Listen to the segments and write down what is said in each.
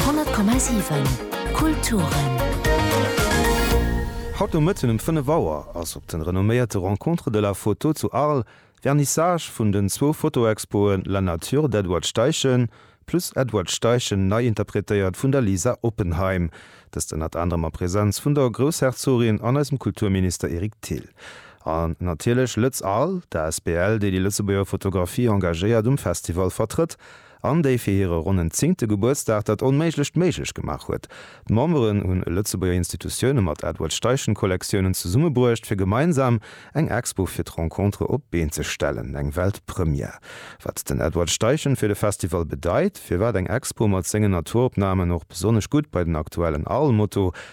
100,7 Kulturen. Haut no Mëtten um 5 Auer ass op de renomméierte Rencontres de la photo zu Arles Vernissage vun den zwou Fotoexpoen La nature d'Edward Steichen plus Edward Steichen nei interpretéiert vun der Lisa Oppenheim, dëst ënnert anerem a Präsenz vun der Groussherzogin an eisem Kulturminister Eric Thill. An natierlech Lëtz Arles, d'asbl, déi déi Lëtzebuerger Fotografie engagéiert, um Festival vertrëtt. an déi fir hire ronnen zéngte Gebuertsdag dat Onméiglecht méiglech gemaach huet. D'Memberen hunn Lëtzebuerger Institutioune mat Edward Steichen Kollektiounen zesummebruecht fir gemeinsam eng Expo fir d'Rencontre op d'Been ze stellen, eng Weltpremière. Wat den Edward Steichen fir de Festival bedeit, firwat eng Expo mat sengen Naturopnamen och besonnesch gutt bei den aktuellen Arlmotto,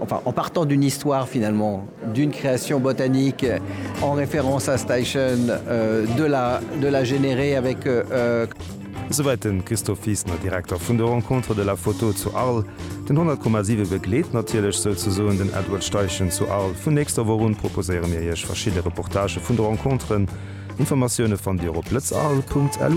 enfin en partant d'une histoire finalement d'une création botanique en référence à Steichen de la de la générer avec. Esouwäit den Christophe Wiesner, Direkter vun der Rencontre de la photo zu Arles. Den 100,7 begleet natierlech souzesoen den Edward Steichen zu Arles. Vun nächster Woch un proposéiere mir Iech verschidde Reportagë vun de Rencontren. Informatioune fannt Dir op lëtzearl.lu.